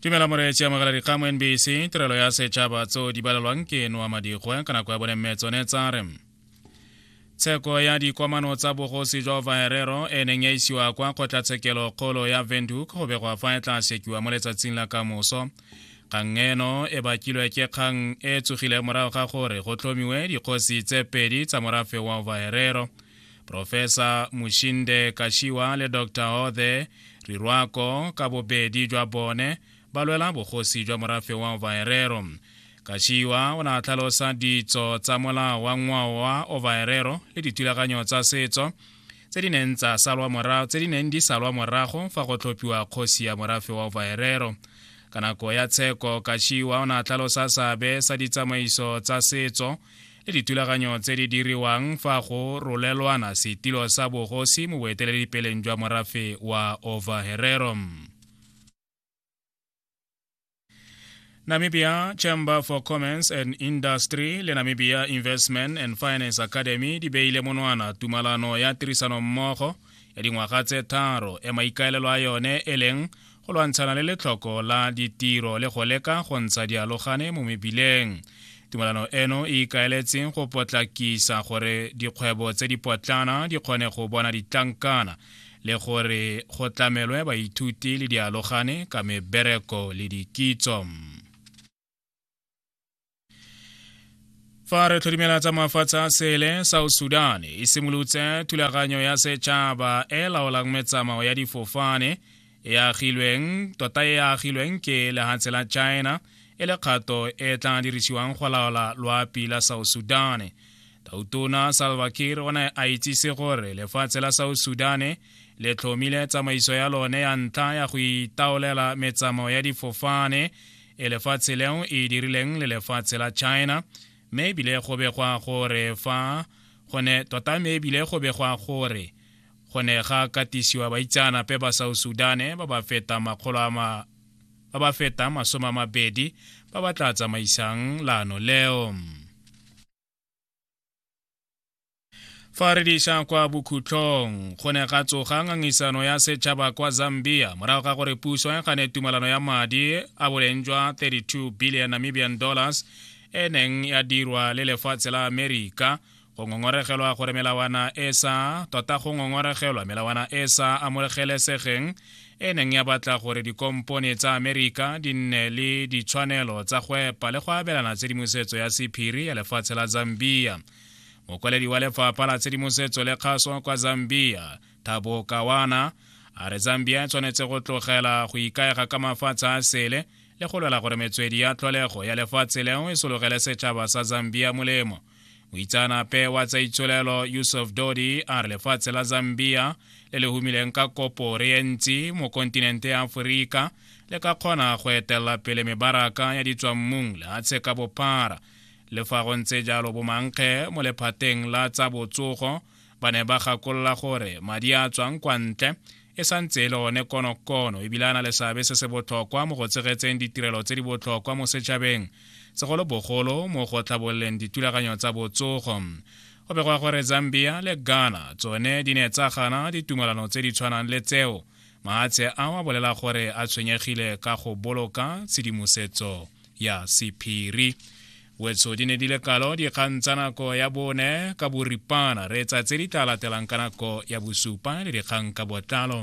tumela moreetsi amogela dikgang mo nbc tirelo ya setšhaba tseo di balelwang ke noa madigwe ka nako ya bone mme tsone tsa re tsheko ya dikwamano tsa bogosi jwa vaherero e neng ya isiwa kwa kgotlatshekelo kgolo ya venduk go begwa fa e tla sekiwa mo letsatsing la kamoso kgang eno e bakilwe ke kgang e tsogile morago ga gore go tlhomiwe dikgosi tse pedi tsa morafe wa vaherero e Profesa Mushinde Kashiwa le Dr. Hothe Rirwako ka bobedi jwa bone ba lwela bogosi jwa morafe wa Ovaherero. Kashiwa o ne a tlhalosa ditso tsa molao wa ngwao wa Ovaherero le dithulaganyo tsa setso tse di neng tsa salwa morago tse di neng di salwa morago fa go tlhophiwa kgosi ya morafe wa Ovaherero. Ka nako ya tsheko, Kashiwa o ne a tlhalosa seabe sa ditsamaiso tsa setso le ditulaganyo tse di diriwang fa go rolelwana setilo sa bogosi mo boeteledipeleng jwa morafe wa overherero Namibia Chamber for Commerce and Industry le Namibia Investment and Finance Academy di beile monwana tumalano ya tirisanommogo ya dingwaga tse tharo e maikaelelo a yone e leng go lwantshana le letlhoko la ditiro le go leka go ntsha dialogane mo mebileng tumelano eno e ikaeletseng go potlakisa gore dikgwebo tse di potlana di kgone go bona ditlankana le gore go tlamelwe baithuti le dialogane ka mebereko le dikitso fa re tlhodimela tsa mafatshe a sele south sudan e simolotse thulaganyo ya setšhaba e laolang metsamao ya difofane e agilweng tota e agilweng ke lehatshe la china e le kgato e tla dirisiwang go laola loapi la south sudan tautona salva kir o ne a itsise gore lefatshe la south sudan le tlhomile tsamaiso ya lone ya ntlha ya go itaolela metsamao ya difofane e lefatshe leo e dirileng le lefatshe la china mme ebile go begwa gore fa gone tota mme ebile go begwa gore go ne ga katisiwa baitseanape ba south sudane ba ba feta makgolo a ma ba ba feta masome a mabedi ba ba tla tsamaisang laano leo fa re diša kwa bokhutlong go ne ga tsoga ngangisano ya setšhaba kwa zambia morago ga gore puso e gane tumalano ya madi a boleng jwa 32 billion namibian dollars e neng ya dirwa le lefatshe la amerika go ngongoregelwa gore melawana e sa tota go ngongoregelwa melawana e sa amogelesegeng e neng ya batla gore dikompone tsa amerika di nne le ditshwanelo tsa go epa le go abelana tshedimosetso ya sephiri ya lefatshe la zambia mokwaledi wa lefapha la tshedimosetso le kgaso kwa zambia thabo kawana a re zambia e tshwanetse go tlogela go ikaega ka mafatshe a sele le go lwela gore metswedi ya tlholego ya lefatshe leo e sologele setšhaba sa zambia molemo moitseanape wa tsa itsholelo yusuf dodi a re lefatshe la zambia le le humileng ka kopo re e ntsi mo kontinente ya aforika le ka kgona go etelela pele mebaraka ya ditswammung lehatshe ka bophara le fa go ntse jalo bomankge mo lephateng la tsa botsogo Ba ne ba gakolola gore madi a a tswang kwa ntle e sa ntse e le one konokono ebile a na le seabe se se botlhokwa mo go tshegetseng ditirelo tse di botlhokwa mo setšhabeng segolobogolo mo go tlhabololeng dithulaganyo tsa botsogo go begwa gore zambia le ghana tsone di ne tsa gana ditumalano tse di tshwanang le tseo mahatshe a wa bolela gore a tshwenyegile ka go boloka tshedimosetso ya sephiri wetso di ne di le kalo dikgang tsa nako ya bone ka boripana re etsa tse di tla latelang ka nako ya bosupa le dikgang ka botlalo